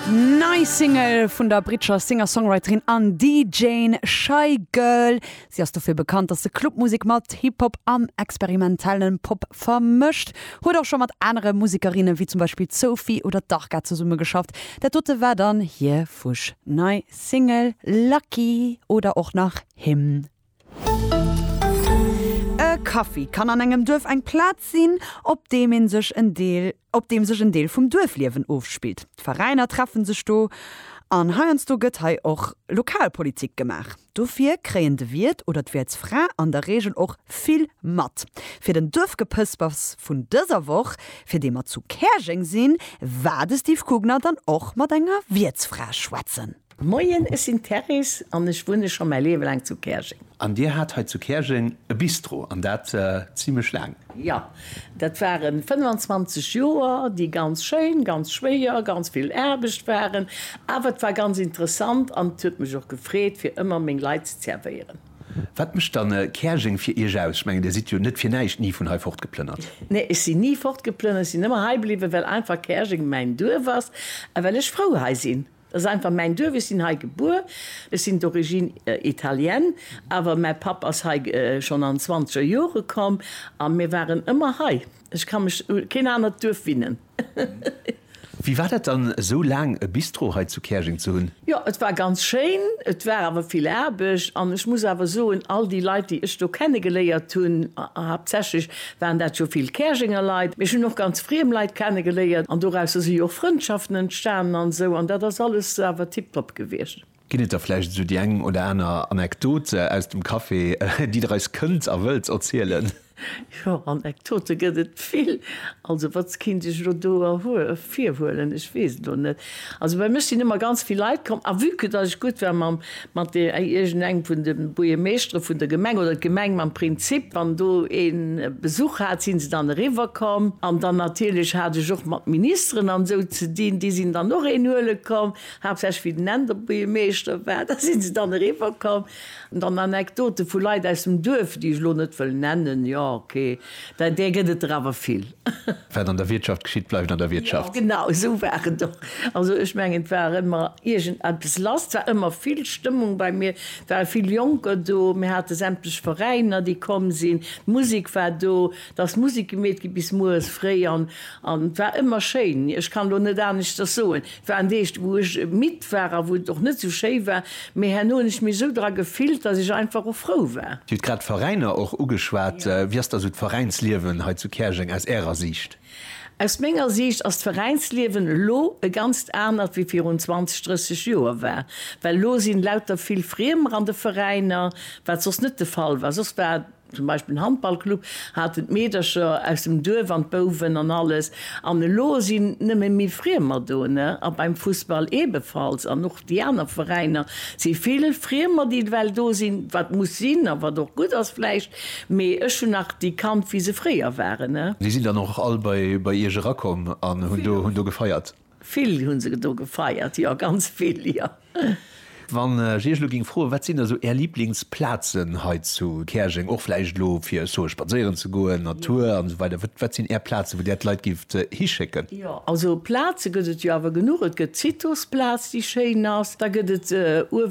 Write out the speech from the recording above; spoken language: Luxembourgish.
Nei Single vun der britscher Singer-Songwriterin an DJin Shygirl. Si ass dofir bekannt, datt se Clubmusek mat Hip-Hop an experimentellen Pop vermëscht. Huet och scho mat anere Musekerinne wéi zum Beispill Sophie oder Darga zesummegeschafft. Dat dote war dann hir fuschnei Single Lucky oder och nach Him. E Kaffi kann an engem Duerf eng Plaz sinn, op deem ee sech en Deel op deem sech en Deel vum Duerfliewen ofspillt. D'Veräiner treffe sech do an heiansdo gëtt hei och Lokalpolitik gemaach. Dofir kréien de Wiert oder d'Wiertsfra an der Reegel och vill mat. Fir den Duerfgepëspers vun dëser Woch, fir dee mer zu Käerjeng sinn, war de Steve Kugner dann och mat enger Wiertsfra schwätzen. Moien, ech sinn d'Therese an ech wunne scho mäi Liewe laang zu Käerjeng. An Dir hat hei zu Käerjeng e Bistro, an dat zimlech laang? Jo, dat ware 25 Joer, déi ganz schéin, ganz schwéier, ganz vill Aarbecht waren, awer et war ganz interessant an et huet mech och gefreet, fir ëmmer meng Leit ze zervéieren. Wat mécht dann Käerjeng fir Iech aus? Ech mengen, Dir sidd jo net fir näischt ni vun hei fortgeplënnert? Nee, ech sinn ni fortgeplënnert, ech sinn ëmmer hei bliwwen, well einfach Käerjeng mäin Duerf ass a well ech frou hei sinn. Dat ass einfach mäin Duerf. Ech sinn hei gebuer. Ech sinn d'origine italienne, awer mäi Papp ass hei schonn an zwanzeger Jore komm a mir waren ëmmer hei. Ech ka mech u keen anert Duerf winnen. Wéi war dat dann, esou laang e Bistro hei zu Käerjeng ze hunn? Jo, et war ganz schéin. Et war awer vill Aarbecht an ech muss awer soen, all déi Leit, déi ech do kennegeléiert hunn, haaptsächlech waren dat jo vill Käerjenger Leit, mee ech hunn och ganz friem Leit kenne geléiert an dorausser si jo och Frëndschaften entstanen an esou an dat ass alles awer tiptop gewiescht. Ginn et da vläicht esou déi eng oder aner Anekdote aus dem Café, déi Der eis kënnt a wëllt erzielen? Jo, Anekdote gëtt et vill. Also, wat kéint ech elo do erhuel, virhuelen? Ech weess elo net. Also bei mech sinn ëmmer ganz vill Leit komm, a vue que datt ech gutt war mam, mat de, iergendengem vun de Buergermeeschtere vun der Gemeng oder d'Gemeng mam Prinzip, wann do een Besuch hat, si se dann eriwwerkomm. An dann natierlech hat ech och mat Ministeren an esou ze dinn, déi sinn dann och een huele komm, haaptsächlech wéi den Änder Buergermeeschter war, da si se dann eriwwerkomm. An dann Anekdote vu Leit aus dem Duerf, déi ech elo net wëll nennen, jo ok, dat där gëtt et der awer vill. Wat an der Wiertschaft geschitt, bleift an der Wiertschaft. Jo genau esou war et och. Also ech mengen et war ëmmer iergend eppes lass, et war ëmmer vill Stëmmung bei mir, et ware vill Jonker do, mir hate sämtlech Veräiner déi komm sinn, d'Musek war do, Da ass Musik gemeet gi bis mueres fréi an et war ëmmer schéin. Ech kann elo net aneschters soen. Et waren Deeg, wou ech midd war a wou et och net esou schéi war, mee herno hunn ech mech esou dra gefillt, dass ech einfach och frou war. Dir hutt grad d'Veräiner och ugeschwat. Wéi ass da esou d'Veräinsliewen hei zu Käerjeng aus Ärer Siicht? Aus menger Siicht ass d'Veräinsliewen elo e ganzt anert wéi virun 20, 30 Joer war. Well elo si lauter vill Friemer an de Veräiner, wat soss net de Fall war. Soss war Zum Beispill den Handballclub haten d'Meedercher aus dem Duerf an d'Bouwen an alles. An elo sinn nëmme méi Friemer do, ne? A beim Fussball eebefalls. An och déi aner Veräiner si vill Friemer, déi ewell do sinn, wat muss sinn a wat och gutt ass vläicht. Mee ech hunn nach déi kannt, wéi se fréier waren, ne? Déi sinn dann och all bei Iech erakomm an hunn do gefeiert? Vill hunn se do gefeiert, jo, ganz vill, jo. Wann ech Iech elo géing froen, wat sinn da sou Är Liblingsplazen hei zu Käerjeng, och vläicht elo fir, ech soe spadséieren ze goen, Natur an esou weider, wat wat sinn Är Plazen, wou Där d'Leit géift hischécken? Jo, also Plaze gëtt et jo awer genuch. Et gëtt d'Citosplaz, déi schéin ass. Da gëtt et uewe